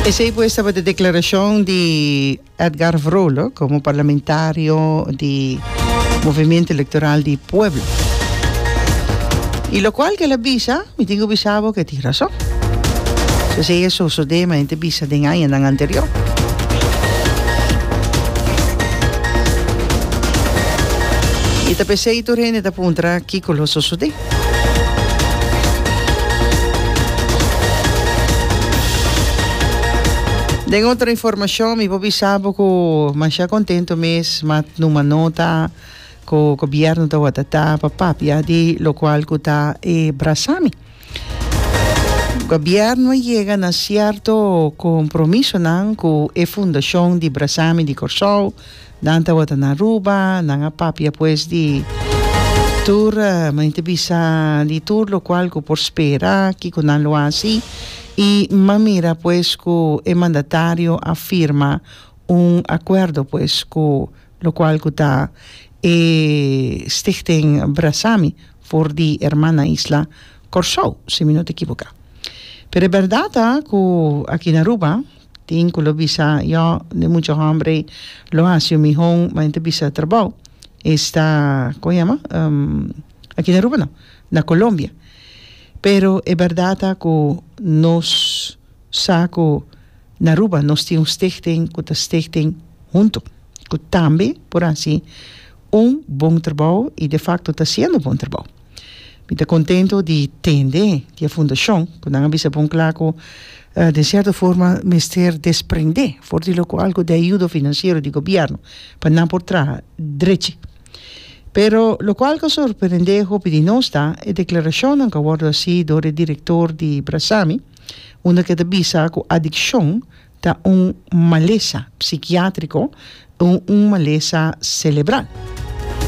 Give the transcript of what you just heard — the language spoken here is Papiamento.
Esey pues tabata declaracion di Edgar Vrolo como parlamentario di Movimiento Electoral di Pueblo. Y locual que el a bisa, mi tin cu bisa bo cu e tin razon. So esey a sosode, mi a yente bisa den añanan anterior. Y ta p'esey tur hende ta puntra kico lo sosode. Den otro informacion mi por bisa bo cu masha contento mes ma numa nota cu gobierno ta watata pa papia di locual cu ta e brasami gobierno a yega na cierto compromisonan cu e fundacion di brasami di Corsou Nan tabata na Aruba, nan a papia pues di tur mani ta bisa di tur locual cu por spera kico nan lo haci y m'a mira pues cu e mandatario a firma un acuerdo pues cu locual cu ta e Stichting Brasami for di herman na isla Corsou si mi no ta equivoca. Pero e berdad ta cu aki na Aruba Tin cu lo bisa, Yo, e mucha hombre lo haci un mihoon, ma e ta bisa trabao. Esta, como e yama? Aki na Aruba no, na Colombia. Pero e berdad ta cu nos sa cu na Aruba nos tin un stichting cu ta stichting hunto, cu tambe por haci Un bon trabou y de facto ta haciendo bon trabou. Mi ta contento di tende di e fundacion cu nan a bisa bon cla cu den cierto forma mester desprende for di loco algo di ayudo financiero di gobierno pa nan por traha drechi. Pero loco al ta sorprende hopi di nos ta e declaracionnan cu a wordo haci door e director di Brasami unda cu e ta bisa cu adiccion Ta un malesa psikiátriko o un malesa selebral.